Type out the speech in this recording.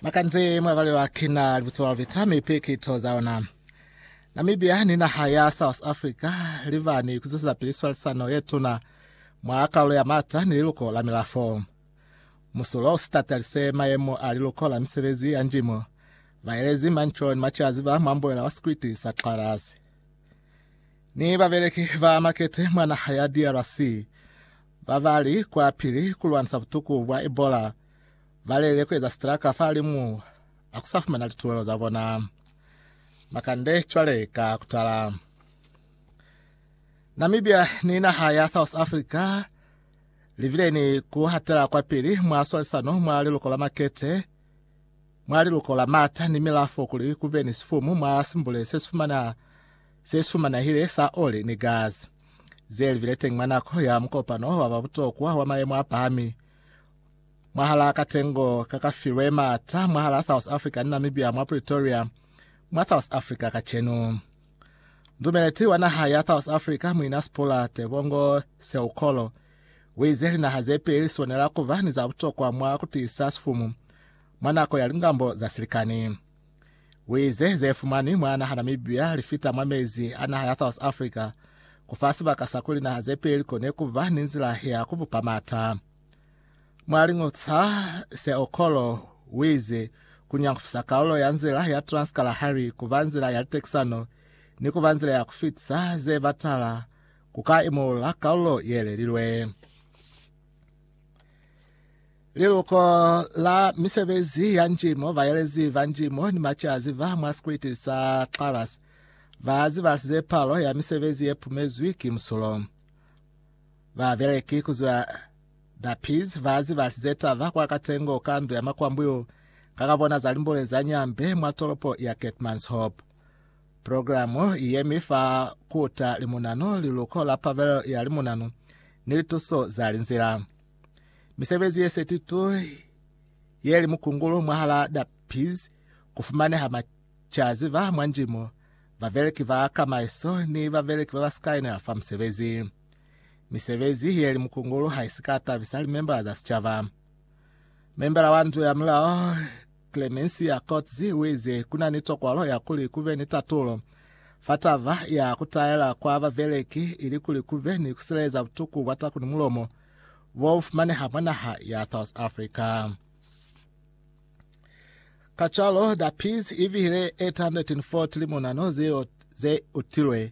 Makanze mwa balelwa kina libuto la lubeta mi piki to za ona. Namibia ni naha ya South Africa libani kuzuza pili swalisano ye tuna mwa kaulo ya mata ni liluko la milafo. Musulo usitatalise mayemo a liluko la misebezi ya njimo baelezi manco ni machazi ba mwamboela wa sikwiti sa Xarasi ni babeleki ba makete mwa naha ya DRC Babali kwapili kulwanisa butuku bwa Ebola balelele kueza sitraka fahalimu akusafumana lituwelo zabona. Makande cwale ka kutala. Namibia ni naha ya South Africa libile ni kuhatela kwapili mwa swalisano mwa liluko la makete mwa liluko la mata ni milafo kuli kube ni sifumu mwa simbule sesifumana se sumanahile sa oli ni gasi, ze livile teñi mwa nako ya mukopano wa ba butokwa wa mayemo a pahami mwahalaa katengo ka ka filwe maata mwahalaa South Africa ni Namibia mwa Pretoria, mwa South Africa kacenu. Ndumeleti wa naha ya South Africa, Muina Sphula Tebongo Seukolo, uize linaha ze peli li swanela kuba ni za butokwa mwa kutiisa sifumu mwa nako ya lingambo za silikani. Wize zefumani mwa naha Namibia lifita mwa mezi a naha ya South Africa kufa sibaka sa kuli naha zepeli kone kuba ni nzila ya kubupa mata. Mwa liñutsa se Okolo wize kunyangufisa kalulo ya nzila ya Trans-Kalahari kuba nzila ya litekisano ni kuba nzila ya kufitisa ze batala kuka imulula kalulo yelelilwe. Liluko la misebezi ya njimo, baelezi ba njimo ni macazi ba mwa sikwiti sa Claras ba zibalisize palo ya misebezi ye pumezwi ki musulo. Babeleki ku zwa Dapiz ba zibalisize taba kwa katengo ka ndu ya makwambuyu ka ka bona za limbule za Nyambe mwa tolopo ya Keetmanshoop. Programo i yemi fa kuta limunano, liluko la pabelelo ya limunano, ni lituso za linzila. Misebezi ye 32 ye li mukungulu mwahala Dappies ku fumaneha macazi ba mwa ndimo, babeleki ba kamaiso ni babeleki ba ba si ka inela fa musebezi. Misebezi ye li mukungulu ha i si ka tabisa limembala za sicaba. Membala wa Ndu ya Mulao Clemencia Coetzee u ize, Ku na ni tokwalo ya kuli ku be ni tatulo fa taba ya ku taela kwa babeleki ilikuli ku be ni ku sileleza butuku bwa taku ni mulomo bo bu fumaneha mwa naha ya South Africa. Kacwalo, Da Peas i bihile 840 limonano zeo ze utilwe